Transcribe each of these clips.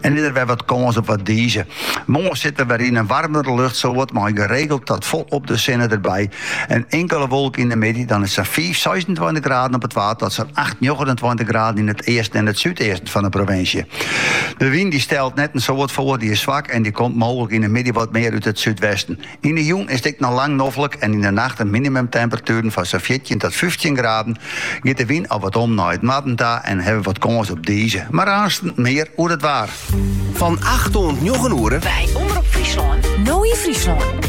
En is der wer wat kâns op wat dize. Moarn sitte we wer yn in warmere luchtsoart mei geregeld dat folop de sinne derby. In inkele wolk yn de middei, dan is it sa'n fiif, seisentweintich graden op it Waad tot sa'n acht, njoggenentweintich graden yn it easten en it súdeasten fan de provinsje. De wyn dy stelt net in soad foar, dy is swak en dy komt mooglik yn de middei wat mear út it súdwesten. Yn 'e jûn is it ek noch lang noflik en yn 'e nacht in minimumtemperatuer fan sa'n fjirtjin tot fyftjin graden. Giet de wyn al wat om nei it noarden ta en hawwe we wat kâns op dize, mar aansten mear oer it waar. Fan acht oant njoggen oere. By Omrop Fryslân. No yn Fryslân.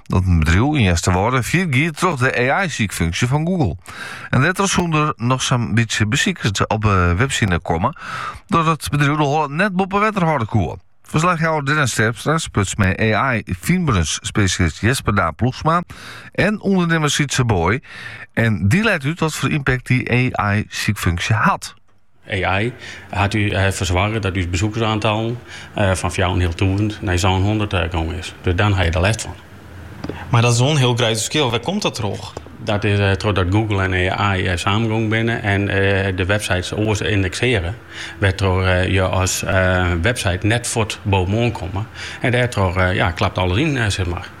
Dat in bedriuw yn Easterwâlde fallyt gie troch de AI-sykfunksje fan Google. En dêrtroch soenen der noch sa'n bytsje besikers op de webside komme, dat it bedriuw de holle net boppe wetter hâlde koe. Ferslachjouwer Dennis Terpstra spruts mei AI-fynberensspesjalist Jesper Daan Ploegsma en ûndernimmer Sietse Booi en dy leit út watfoar ympakt dy AI-sykfunksje hat. AI hat erfoar soarge dat ús besoekersaantallen fan fjouwerenhealtûzen nei sânhûndert gongen is. Dus dan ha je der lêst fan. Mar dat is wol in hiel grutte ferskil. Wêr komt dat troch? Dat is trochdat Google en AI samengongen binne en de websites oars indeksearje, wêrtroch je as website net fuort bovenoan komme en dêrtroch klapt alles yn, sis mar.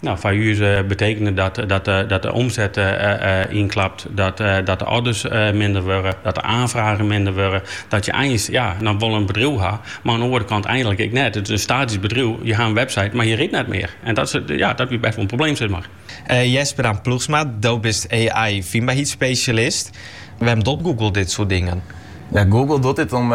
Nou, foar ús betekent dat dat de omset ynklapt, dat de orders minder wurde, dat de aanfragen minder wurde, dat je eins ja, dan wol in bedriuw ha, mar oan de oare kant eigenlik ek net. It is in statysk bedriuw, je ha in website, mar je rydt net mear. En dat is ja, dat wie best wol in probleem sis mar. Jesper Daan Ploegsma, do bist AI-fynbaarheidsspesjalist. Wêrom docht Google dit soart dingen? Google docht dit om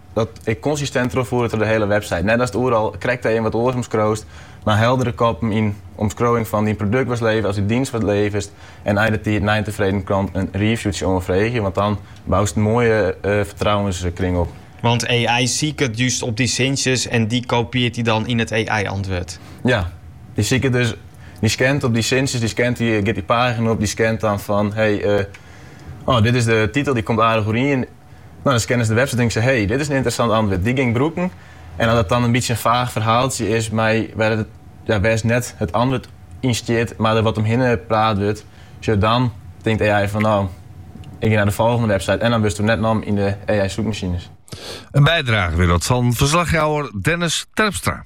Dat ik konsistint trochfoere troch de hiele website. Net datst oeral krekt even wat oars omskriuwst, mar heldere koppen en omskriuwing fan dyn produkt watst leverest, as dy dienst watst leverest en nei de tiid nei in tefreden klant in reviewtsje oanfreegje, want dan boust in moaie fertrouwenskring op. Want AI siket just op dy sintsjes en dy kopieart dy dan yn it AI-antwurd. Ja, dy siket dus, dy skant op dy sintsjes, dy skant dy, giet dy pagina op, dy skant dan fan hey, oh dit is de titel, dy komt aardich oerien. No, dan scanne se de website, tinke se, hey, dit is in ynteressant antwurd, dy gean 'k brûken. En as it dan in bytsje in faach ferhaaltsje is mei wêr'tst net it antwurd yn stiet, mar der wat omhinne praat wurdt, sjoch dan, tinkt AI fan, no, ik gean nei de folgjende website en dan wurdsto net nommen yn de AI-soekmasines. In bydrage wie dat fan ferslachjouwer Dennis Terpstra.